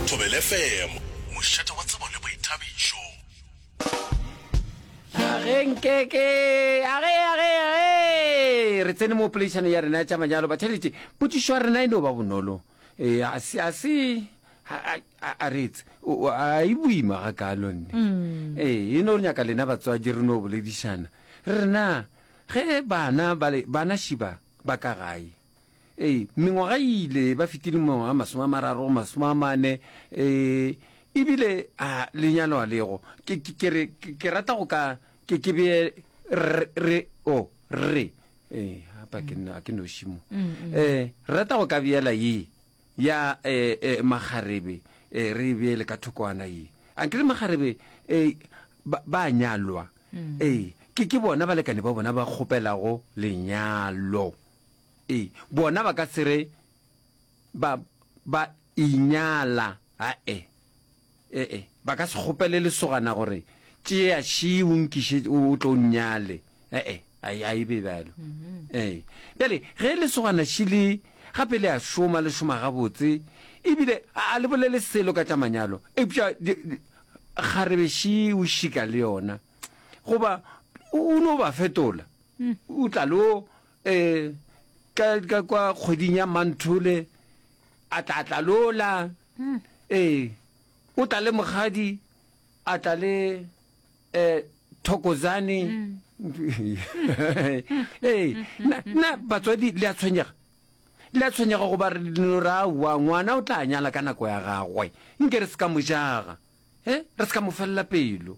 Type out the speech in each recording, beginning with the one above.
Thobela FM, mošate wa tsebo le boithabišo. Tlhageng keke age age age re tsene mo poleišano ya rena ya tša manyalo batheletše potšišo ya rena e no ba bonolo e a se a se a re etse a e boima ga kalo nne mm. e e no re nyaka lena batswadi re no boledišana re rena ge bana bana šiba ba ka gae Ee, mengwaga e ile ba fetile mengwaga masome a mararo go masome a mane, ee, ebile a lenyalo a lego. Ke, ke, ke re, ke, ke rata go ka, ke, ke bee, re, re, o, oh, re, ee, hapa ke, a ke noši mo. Mm, mm. Ee, rata go ka beela ye, ya, ee, ee, magarebe, ee, re e beele ka thokwana ye. A ke le magarebe, ee, ba, ba nyalwa. Mm. Ee, ke, ke bona balekane ba bona ba kgopelago lenyalo. E, bona ba ka se re ba, ba inyala, ae. E-e, ba ka se kgopele lesogana gore, Tšea Shi o nkiše o tlo nnyale. E-e, ai, ai be bjalo. Ee. Bjale, ge lesogana Shi le, gape le a šoma, le šoma gabotse, ebile a, a le bolele selo ka tša manyalo, eupša di, di, kgarebe Shi o šika le yona, goba o, o no ba fetola. o tla lo um ka kwa kgweding ya manthole a tla tla lola ee o tla le mogadi a tla le um thokozane ee na batswadi le a tshwenyega le a tshwenyega go ba re leno ra wa ngwana o tla nyala ka nako ya gagwe nke re se ka mojaga e re se ka mo felela pelo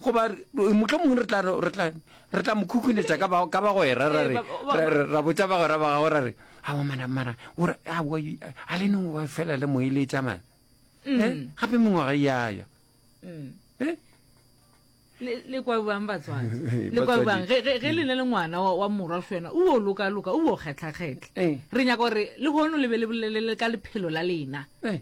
goba mohlomongwe re tla re tla re tla mo khukhunetsa ka ba ka bagwera ra re ra botsa bagwera ba gago ra re a wa mana mara o re a wa a le neng wa fela le mo ile tsa mana mm. eh gape mongwe ga ya ya mm. eh le kwa bang batswana le kwa bang ge ge le ne le ngwana wa morwa fena o lo ka loka o kgetla kgetla eh. re nyaka gore le hono le be le bolelele ka lephelo la lena eh.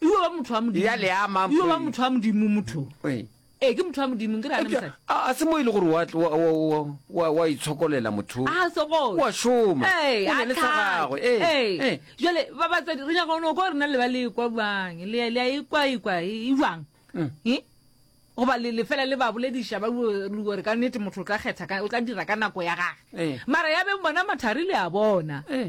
Iyo ba motho wa modimo. Ya le ama. Iyo ba motho wa modimo motho. Eh. Eh ke motho wa modimo ke rana mosadi. A se mo ile e gore wa wa wa itshokolela motho. A se go. Wa shoma. Eh, a le tsagago. Eh. Eh. eh. Jale ba ba tsadi re nyaga no go rena le ba le kwa bang. Le le e kwa e kwa e jwang. Mm. Eh. go ba le fela le ba bolediša ba gore ka nnete motho o tla kgetha o tla dira ka nako ya gage eh. mara ya beng bona mathari le a bona eh.